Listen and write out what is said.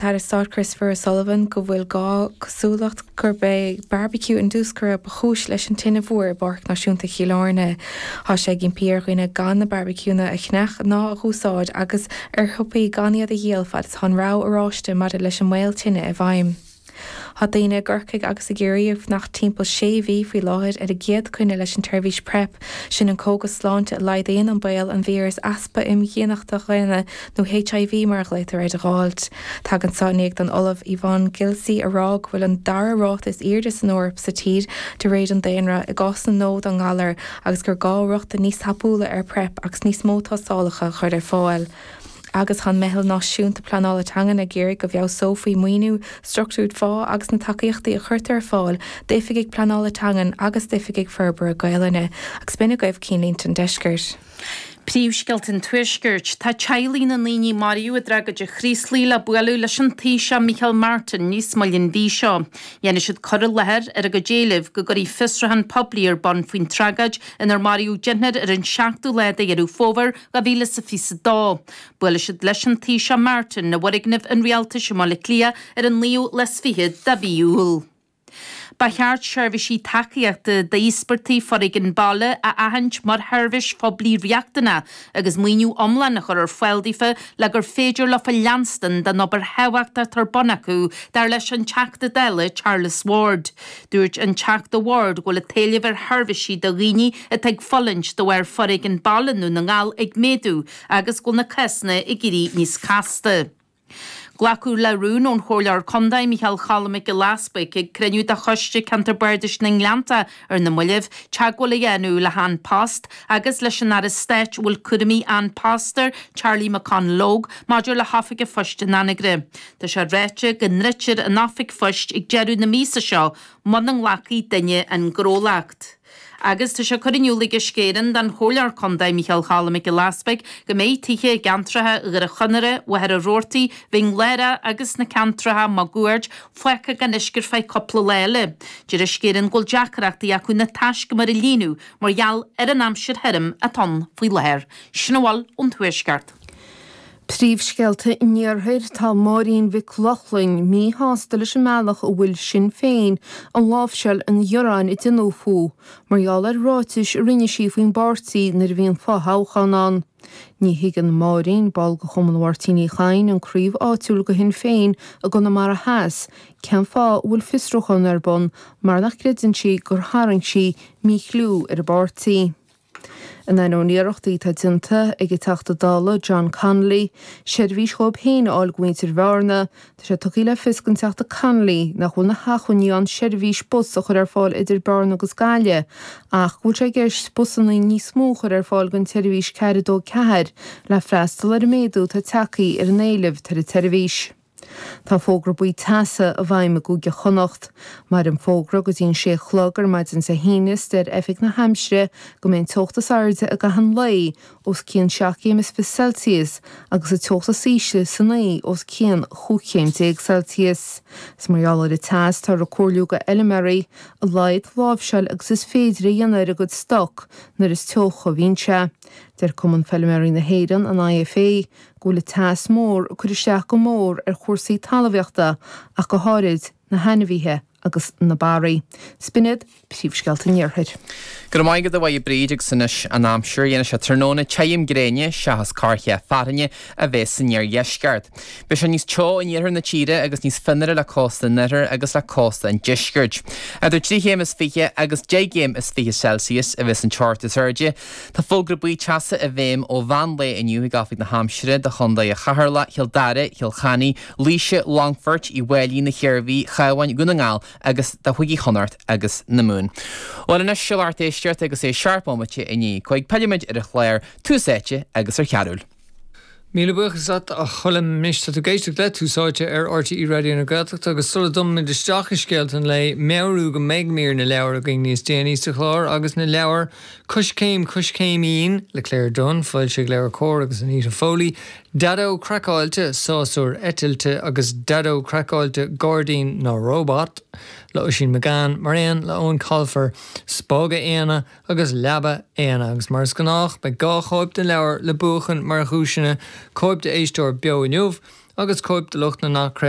tAire Stáit Christopher O'Sullivan go bhfuil gach cosúlacht gurb é barbecue indiúscartha ba chúis leis an tine mhór i bPáirc Náisiúnta Chill Airne. Thá sé ag impí ar dhaoine gan na barbecueanna a cheannach ná a dh'úsáid agus ar shiopaí gan iad a dhíol fad is thá an rabhadh oráiste maidir leis an mbaol tine i bhfeidhm. Thá daoine i gCorcaigh agus i gCiarraí ag fanacht timpeall sé mhí faoi láthair ar a gcéad coinne leis an tseirbhís prep, sin an cógas sláinte a laghdaíonn an baol an víreas easpa imdhíonachta dhaonna nó HIV mar a ghlaotar air, a dh'fháilt. Tagann seo i ndiaidh don Ollamh Yvonne Gilleece a rá go bhfuil an dara ráta is airde san Eoraip sa tír de réir an daonra, i gcásanna nua den ngalar, agus gur gá rochtain níos tapúla ar PrEP agus níos mó tástálacha a chur ar fáil. Agus thá an Meitheal Náisiúnta Pleanála Teangan ag iarraidh go bhfeabhsófaí maoiniú, structúirt phá agus na tacaíochtaí a chuirtear ar fáil d'oifigigh pleanála teangan agus d'oifigigh forbartha Gaelainne, agus b'in agaibh cinn línte an deiscirt. Príomhscéalta an Tuaiscirt. Tá teaghlaigh na ndaoine a maraíodh i dtragóid an Chraoslaigh le bualadh leis an Taoiseach Micheál Martin níos moille an mhí seo. Déanfaidh siad cur i láthair ar a gcuid éileamh go gcuirfí fiosrúchán poiblí ar bun faoin tragóid inar maraíodh deichniúr ar an seachtú lá de Dheireadh Fómhair 2022. Buailfidh siad leis an Taoiseach Martin i bhfoirgneamh an rialtais i mBaile Átha Cliath ar an naoú lá is fiche de mhí Iúil. Ba cheart seirbhísí tacaíochta d'íospartaigh foréigin baile a aithint mar sheirbhís phoiblí riachtanach agus maoiniú iomlán a chur ar fáil daofa le gur féidir leofa leanstan den obair thábhachtach atá ar bun acu, dar leis an Teachta Dála Charles Ward. Dúirt an Teachta Ward go bhfuil an t-éileamh ar sheirbhísí do dhaoine atá ag fulaingt de bharr foréigean baile i nDún na nGall ag méadú agus go bhfuil na cásanna ag éirí níos casta. Glacadh le rún ón Chomhairleoir Contae Micheál Choilm Mac Giolla Easbuig ag cruinniú de Choiste Ceantar Bardais na nGleanntach ar na mallaibh teagmháil a dhéanamh le hAn Post agus leis an Aire Stáit a bhfuil cúraimí An Post air, Charlie McConalogue, maidir le hoifig an phoist in Anagaire. Tá sé ráite go ndruidfear an oifig phoist ag deireadh na míosa seo muna nglacfaidh duine an gnólacht. agus tá sé curtha in iúl ag Uisce Éireann don Chomhairleoir Contae Micheál Choilm Mac Giolla Easbuig go mbeidh tithe i gceantracha Dhoire Chonaire, Mhachaire Rabhartaigh, Mhín Lárach agus sna ceantracha máguaird fágtha gan uisce ar feadh cúpla lá eile. Deir Uisce Éireann go bhfuil deacrachtaí acu na taiscumair a líonadh mar gheall ar an aimsir thirim atá ann faoi láthair. Sin a bhfuil ón Tuaisceart. Príomhscéalta an Iarthair, Tá Máirín Mhic Lochlainn míshásta leis an mbealach a bhfuil Sinn Féin ag láimhseáil an ghearáin a déanadh fúithi mar gheall ar ráitis a rinne sí faoin bpáirtí nuair a bhí an fothoghchán ann. Ní thuigeann Máirín, ball de Chumann Mháirtín Uí Chadhain, an craobh áitiúil de Shinn Féin i gConamara Theas, cén fáth a bhfuil fiosrúchán ar bun mar nach gcreideann sí gur tharraing sí míchliú ar an bpáirtí. In ainneoin iarrachtaí atá déanta ag an Teachta Dála John Connolly seirbhís dhóibh féin a fháil do mhuintir Bhearna, tá sé tugtha le fios ag an Teachta Connolly nach bhfuil na hachmhainní ann seirbhís bus a chur ar fáil idir Bearna agus Gaillimh ach go bhfuil sé i gceist busanna níos mó a chur ar fáil don tseirbhís 424 le freastal ar an méadú atá tagthaí ar an éileamh ar an tseirbhís. Tá fógra buí teasa i bhfeidhm i gCúige Chonnacht. Maireann an fógra go dtí an 6 a chlog ar maidin Dé hAoine is deir Oifig na hAimsire go mbeidh an teocht is airde i gcaitheamh an lae os cionn 7 gcéim is fiche Celsius agus an teocht is ísle san oíche os cionn cúig chéim déag Celsius. Is mar gheall ar an teas táthar ag comhairliú do fheiliméaraí a laghad láimhseáil agus is féidir a dhéanamh ar a gcuid stoc nuair is teocha a bhíonn sé. Deir Cumann Feiliméaraí na hÉireann, an IFA, go bhfuil an teas mór ag cur isteach go mór ar chúrsaí talmhaíochta ach go háirid na hainmhithe agus na barraí. Sin iad Príomhscéalta an Iarthair. Go raibh maith agat, a Mháire Bríd, agus anois an aimsir. Déanfaidh sé tráthnóna te tirim gréine seachas corrchith fearthainne a bhéas san iardheisceart. Beidh sé níos teo in iarthar na tíre agus níos fionnuaire le cósta an oirthir agus le cósta an deiscirt. Idir trí chéim is fiche agus deich gcéim is fiche Celsius a bhéas an teocht is airde Tá fógra buí teasa i bhfeidhm ó mheán lae inniu ag Oifig na hAimsire do Chondae Cheatharlach, Chill Dara, Chill Chainigh, Laoise, Longfoirt, Uí bhFáilí, na hIarmhí, an Chabháin, Dhún na nGall agus do Chúigí Chonnacht agus na Mumhan. Bhuel anois, seo lár d'éisteacht agus é seacht mbomaite i ndiaidh a cúig, pillfimid ar an chlár Tús Áite agus ar Chearbhall. Míle buíochas leat a Choilm. Anois tá tú ag éisteacht le Tús Áite ar RTÉ Raidió na Gaeltachta agus sula dtumann muid isteach i scéalta an lae, meabhrú go mbeidh mír na leabhar againn níos déanaí sa chlár agus na leabhair Coiscéim, Coiscéimín le Claire Dunne, foilsithe ag LeabhairCOMHAR, agus Anita Foley, Daideo Craiceáilte, Sásúir Eitilte, agus Daideo Craiceáilte, Gairdín na Róbat le Oisín McGann, mar aon le Eoin Colfer, Spága Éanna, agus Leaba Éanna, agus mar is gnách beidh dhá chóip den leabhar le buachan mar dhuaiseanna, cóip d'éisteoir beo inniu agus cóip do lucht na n-athchraoltaí.